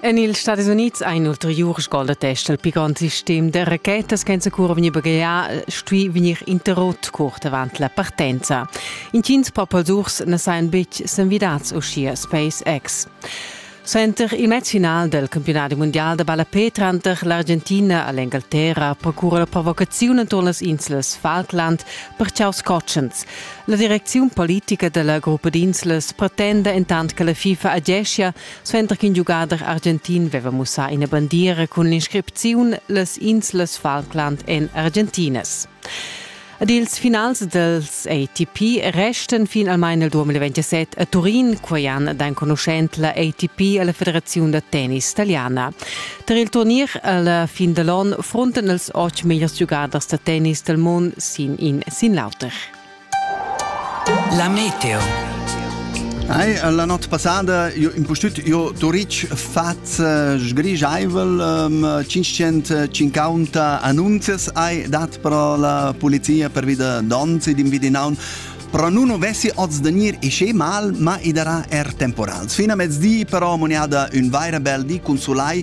En ils Stati Unids ha in ulteriur scoldatest il pi grond sistem da rachetas che cura vegnir baghegià stuì vegnir interrotto curt avant la partenza. Intgins papadurs na sajan betg s'envidads uschia SpaceX. Center il match final del campionat mondial da ballapé tranter l'Argentina e l'Engalterra procura la provocaziun enturn las inslas Falkland per chaus cotschens. La direcziun politica della gruppa d'inslas pretenda entant che la FIFA ageschia Suenter ch'in giugader argentin veva mussà ina bandiera cun l'inscripziun Las inslas Falkland en argentinas. Ed ils finals dels ATP restan finalmein el 2027 a Turin, quei ann ed enconuschent la ATP alla Federaziun da tennis italiana. Tar il turnier alla fin dall'on fronten els otg megliers giugaders da tennis del mund sin in sin l'auter. La meteo. Ei, la not passada io impustüt io Turitg faz eh, sgrigiaivel um, 550 annunzias ai dat pro la polizia per vida donzi dim vidinaun però nun avessi oz da gnir isce mal, ma i darà er temporals. Fina mezdi però moniada ün vaira bel di cun sulai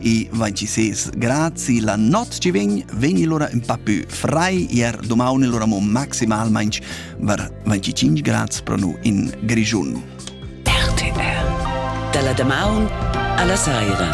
e vai ci ses grazi la not ci vegn vegni lora un pa più frai ier domani lora mo maximalmente var 25 grad pro nu in Grigiun. RTL dalla damaun alla saira